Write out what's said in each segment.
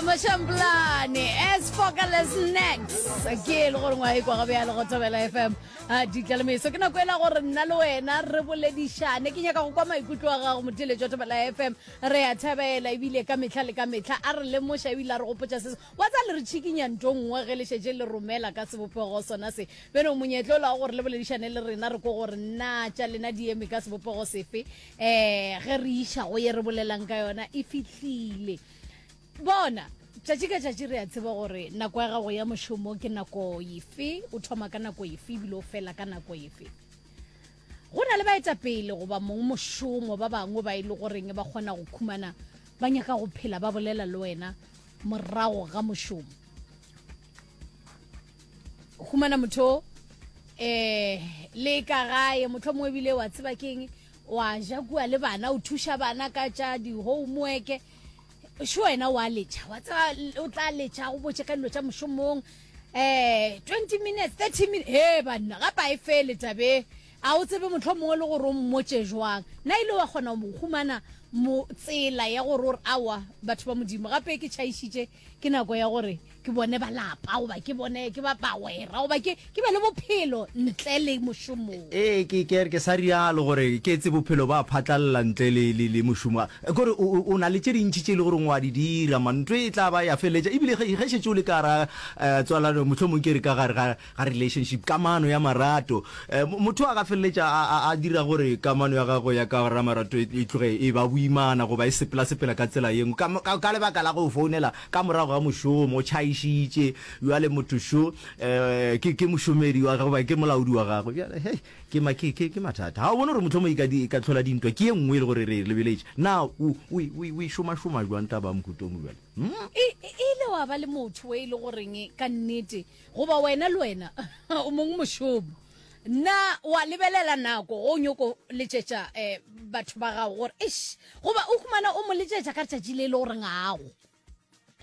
Mashamblane as focaless next ke e le gore ngwae kwa gabe ya le go thobela fm a ditla le meso ke nako ela gore nna le wena re boledišane ke nyaka go kwa maikutlo a gago motheletši wa thobela fm re ya thabela ebile ka metlha le ka metlha a re lemoša ebile a re gopotša seso wa tsa le re tšhikinya nto nngwe ge le šetše le romela ka sebopego sona se beno monyetlo o la gore le boledišane le rena re ko gore na tša lena di eme ka sebopego sefe eh ge re iša go ye re bolelang ka yona e fihlile bona tšatši ka tšatši re a tseba gore nako ya gago ya mošomo ke nako efe o thoma ka nako efe ebile o fela ka nako efe go na le baetapele goba mong mošomo ba bangwe ba e le goreng ba kgona go khumana ba nyaka go phela ba bolela le wena morago ga mošomo humana motho eh le ka gae motho mongwe bile wa tseba keng wa ja kua le bana o thuša bana ka tša di-homework šo wena wa letšha wa tseba o tla letšha go botše ka dilo tša mošomong eh 20 minutes 30 minutes he banna gapa e fele tabe a o tsebe motlho mongwe le gore o mmotse jwang na ile wa kgona go humana mo tsela ya gore ore awa batho ba modimo gape ke tšhaišitše ke nako ya gore ke bone balapa goba ke bone ke ba bagwera goba ke ke be le bophelo ntle le mošomong ee ke ke ke sa rialo gore ke etse bophelo ba phatlalela ntle le le le mošomo Eh, kore o o- o na le tše dintšhi tše e le gore ngwa di dira mantwe e tla ba ya feletša ebile ge ge šetše o le ka ra eh, tswalano mohlomong ke re ka gare ga ga relationship, kamano ya marato. Um, motho a ka feleletša a, a, a dira gore kamano ya gagwe ya ka ra marato e, e tloge e ba boimana goba e sepela-sepela ka tsela yengwe ka, ka, ka lebaka la go founela ka morago ga mošomo, o tšhaišitše, bjale motho šo um, ke, ke mošomedi wa gagwe, ke molaodi wa gagwe, bjale hei, ke, ma, ke, ke, ke mathata. Ga o bone gore mohlomong e ka, di, e ka tlhola dintwa ke ye nngwe e le gore re e lebeletše. Na o, o, o, o e šomašoma jwang taba ya mokhutomo bjale? Hmm? E, e, e ile wa ba le motho e le goreng ka nnete Goba wena le wena o mong mošomo na wa lebelela nako go nyoko letšetša eh, batho ba gago gore eish goba o humana o mo letšetša ka letšatši le e le goreng gago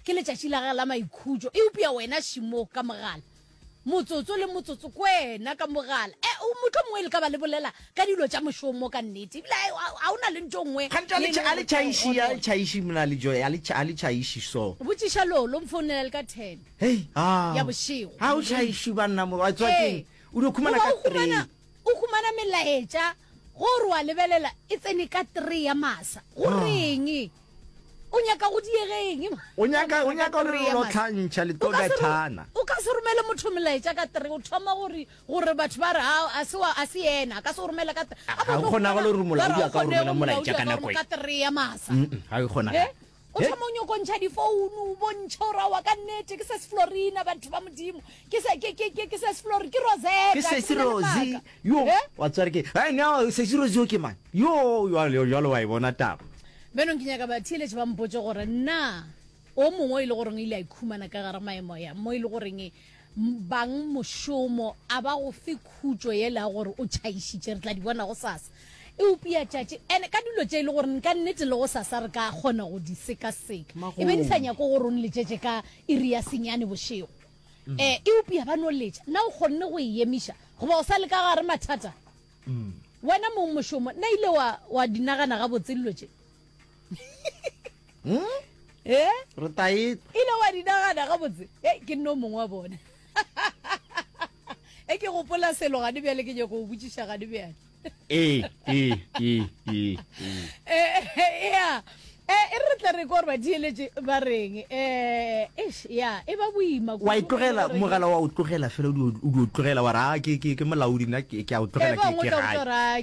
ke letšatši la gage la maikhutšo eupša wena šimo ka mogala motsotso le motsotso kwena ka mogala e eh, motho mongwe le ka ba le bolela ka dilo tša mošomo ka nnete ebile ga o na le ntho nngwe a le tšhaiši mna le joe a le tšhaiši so botšiša lolo mfounela le ka ten Hei, ao. Ya bošego. Ha o tlhaešo banna mo wa tswa keng? Eh, o di khumana ka 3. O khumana melaetša go re wa lebelela e tsene ka 3 ya masa. Go ah. reng? O nyaka go diegeng? O nyaka o nyaka re lo tlhantšha le tlo bethana. O ka se romele motho melaetša ka 3 o thoma gore gore batho ba re ah, a se wa a se yena ka se go romela ka 3. Ha o kgona go le rumula o ya ka romela molaetša ka nako e. Ka 3 ya masa. Ha o kgona. Eh? o thoma o nyoko ntšha difounu o bontšhe gore awa ka nnete ke se se florina batho ba modimo ke se ke- ke- ke- ke se se flori ke rosetta ke sesi bolela rosi maaka. yo Eh? wa tsware ke ai no sesi rosi yo ke mang yo jalo wa e bona taba bjanong ke nyaka batheeletše ba mpotse gore na o mongwe o e le goreng o ile a ikhumana ka gare maemo ya mo e le goreng bang mošomo a ba go fe khutšo yela ya gore o tšhaišitše re tla di bona go sasa e upia tšatši ene ka dilo tše e le gore nka nnete le go sasa re ka kgona go di sekaseka e be di sa nyako gore o nletšetše ka iri ya senyane bošego um e upia ba no letša na o kgonne go e emiša goba o sa le ka gare mathata mm. wena mong mošomo na ile wa, wa dinagana gabotse dilo tše hmm? e eh? re taete e ile wa dinagana gabotse e eh, ke nno mongwe wa bone e ke gopola selo gane bjale ke nyako go botšiša gane bjale ee ee ee ee ee ya Eh, e re tla re ko ba dieletse ba reng eh eish ya e ba boima wa itlogela e mogala wa o tlogela fela o di o tlogela wa ra ke ke ke molaodi nna ke ke a o tlogela eh, ke ke ga